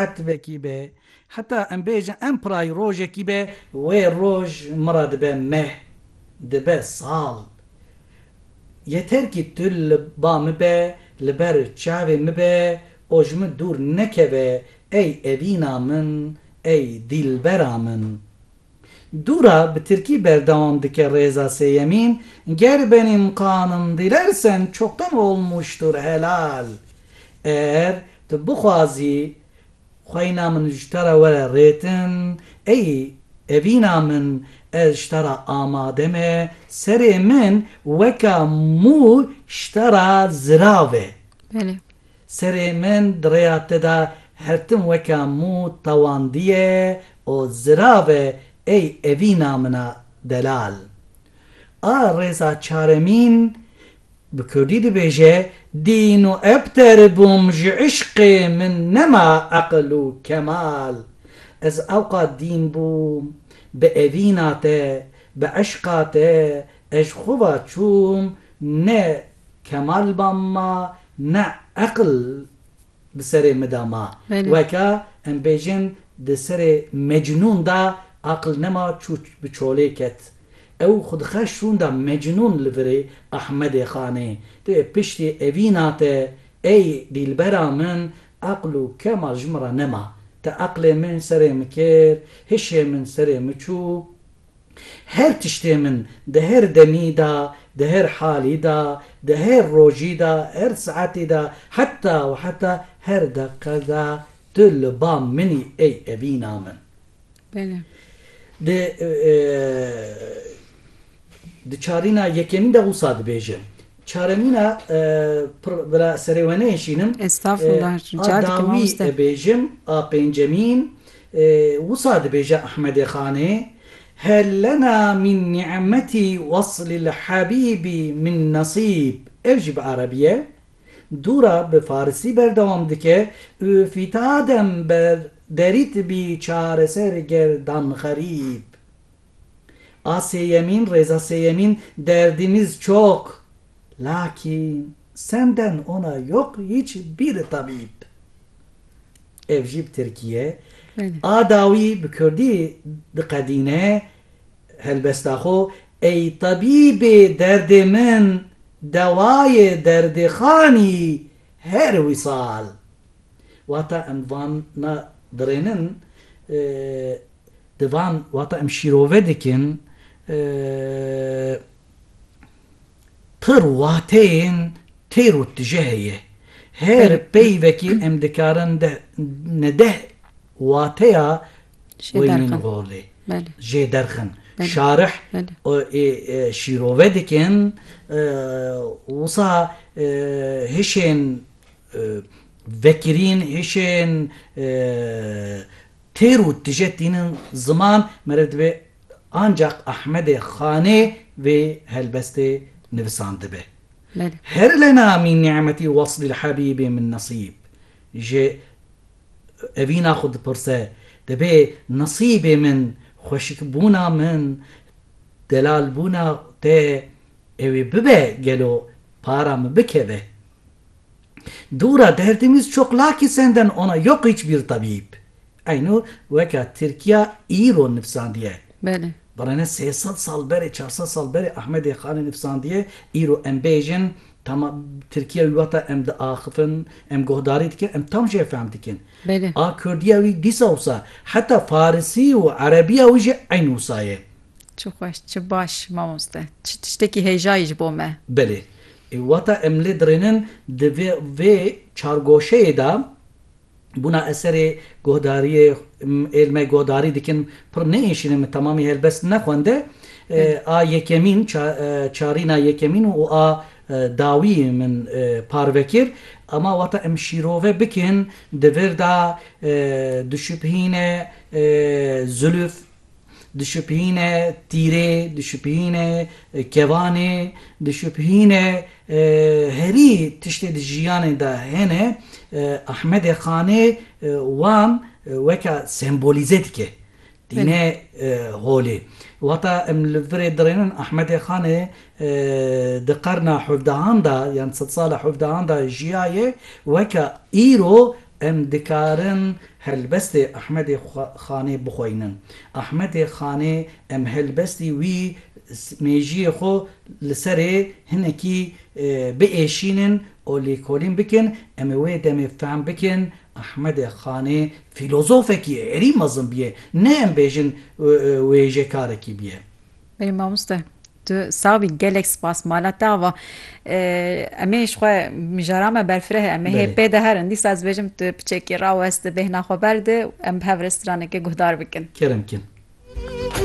Etvekî be, heta em bêjin em pirayî rojekî be. Wê roj min re dibe meh, dibe sal. Yeter kî tu li ba min be, li ber çavê min be û ji min dûr nekeve ey evîna min, ey dîlbera min. Dûra bi tirkî berdewam dike Rêza sêyemîn, Ger benim kanım dilersen çoktan olmuştur helal Eğer tu bixwazî xweyna min ji te re were rêtin ey evîna min ez ji te re amade me Serê min weka mû ji te re zirav e. Serê min di rêya te de her tim weke mû tawandiye û zirav e ey evîna min a delal. A rêza çaremîn bi kurdî dibêje, Dîn û ebter bûm ji îşqê min nema eqil û kemal. Ez ewqat dîn bûm, bi evîna te, bi îşqa te ez ji xwe ve çûm ne. Kemal ba ma ne eql di serê mi da ma. Weke em bêjin di serê Mecnûn da aql nema çû bi çolê ket. Ew xwe dixeş rûnda Mecnûn li virê Ahmedê Xanê. Tu yê piştî evîna te ey dîlbera min eql û kemal ji min re nema. Te eqlê min serê min kir, hişê min serê min çû. Her tiştê min di her demî de, di her halî de, di her rojî de, her saetî de, heta û heta her deqe de tu li ba min î ey evîna min. Bele. Di di çarîna yekemîn de wisa dibêje, Çaremîna pir bila serê we nehişînim. Estağfurullah rica dikim mamoste. A dawî bêjim a pêncemîn wisa dibêje Ahmedê Xanê, Hel lena min ni'metî weslil habîbî min nesîb ev jî bi erebî ye. Dûra bi farisî berdewam dike, Û fîtadem ber derît bî çareser gerdan xerîb. A sêyemîn rêza sêyemîn derdîmîz çok lakîn senden ona yok hiç bîri tabîb. Ev jî bi tirkî ye. A dawî bi kurdî diqedîne helbesta xo Ey tabîbê derdê min dewayê derdê xanî her wisal. Wata em vana dirênin Di van wata em şîrove dikin pir wateyên têr û tije heye. Her peyvekî em dikarin ne deh wateya wênîn holê jê derxin. Şarih şîrove dikin wisa hişên vekirîn hişên Têr û tije tînin ziman, meriv dibe ancaq Ahmedê Xanê vê helbestê nivisandibe. Her lena mîn ni'metî weslî li hebîbê min nesîb. Ji evîna xwe dipirse, Dibê nesîbê min, xweşikbûna min, delalbûna te ew ê bibe gelo para min bikeve? Dûra derdimiz çok lakî senden ona yok hiçbir tabîb. Eyno weka Tirkiya îro nifsandiye. Belê. Birêne sê sed sal berê, çar sed sal berê Ahmedê Xanê nifsandiye, îro em bêjin tama Tirkiya wî wata em diaxifin, em guhdarî dikin, em tam jê fehm dikin. Belê. A Kurdiya wî dîsa wisa heta Farisî û Erebiya wî jî eyn wisa ye. Çi xweş, çi baş mamoste. Çi tiştekî hêjayî ji bo me. Belê. Wata em lê dirênin di vê vê çargoşeyê de bûna eserê guhdariyê êl me guhdarî dikin pir nêêşînin min temamî helbest nexwende a yekemîn çarîna yekemîn û a dawî min parve kir ema wata em şîrove bikin di vir de dişubhîne zilûf dişopîhîne tîrê, dişopîhîne kevanê, dişopîhîne herî tiştê di jiyanê de hene Ahmedê Xanê wan weke sembolîze dike. Tîne holê. Wata em li virê dirênin Ahmedê Xanê di qerna hevdehan de yan sed sala hevdehan de jiyaye weke îro Em dikarin helbestê Ahmedê Xanê bixweynin. Ahmedê Xanê em helbestî wî mêjiyê xwe li serê hinekî biêşînin û lêkolîn bikin, em ê wê demê fehm bikin Ahmedê Xanê fîlozofekî êrî mezin bûye, ne em bêjin wêjekarekî bûye. Ê mamoste, Tu sax bî gelek spas mala te ava. Em ê ji xwe mijara me berfireh em ê hê pê de herin. Dîsa ez bêjim tu piçekî raweste bêhna xwe berde û em bi hev rê straneke guhdar bikin. Kerem kin.